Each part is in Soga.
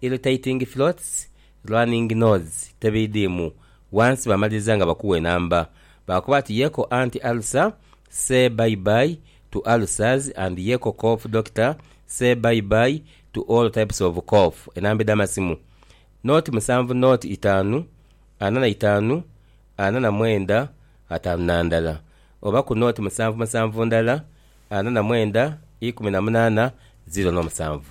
Irritating throats, running nose, tebidhiimu, wansi baamaliriza nga bakuwa enamba. Baakoba ati Yeko anti ulcer, say bye bye to ulcers and Yeko cough doctor, say bye bye to all types of cough. Enamba edh'amasimu, Nought musanvu nought itaanu ana na itaanu ana na mwenda ataanu na ndala oba ku nought musanvu musanvu ndala ana na mwenda ikumi na munaana ziro n'omusanvu.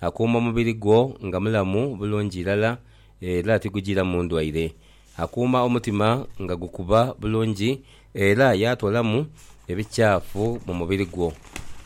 Akuuma omubiri gwo nga mulamu bulungi irala era tigujiiramu ndwaire. Akuuma omutima nga gukuba bulungi era yaatoolamu ebikyafu mu mubiri gwo.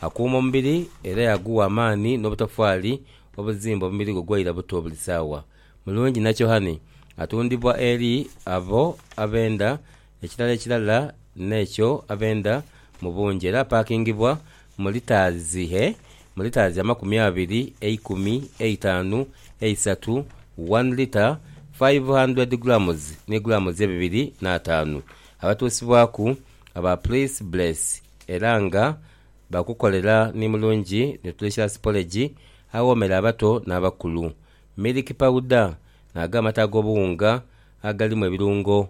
Akuuma omubiri era yaguwa amaani n'obutofali obuzimba omubiri gwo gwaira buto buli saawa. Mulungi Nakyohane atundibwa eri abo abenda Ekirala ekirala n'ekyo abenda mu bungi era apakingibwa mu litaazi he mu litaazi amakumi abiri, eikumi, eitanu, eisatu, one litre, five hundred grams ni grams ebibiri n'ataanu. Abatuusibwaku aba Please Bless era nga bakukolera ni mulungi nutritious porridge awoomera abato n'abakulu, milk powder, nago amata ag'obuwunga agalimu ebirungo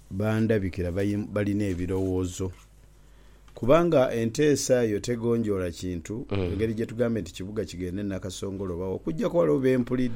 Bandhabikira balina ebirowoozo. Kubanga enteesa eyo tegonjoola kintu, ngeri gye tugambe nti kibuga kigende Nakasongola oba wa, okuggyako waliwo be mpulidde.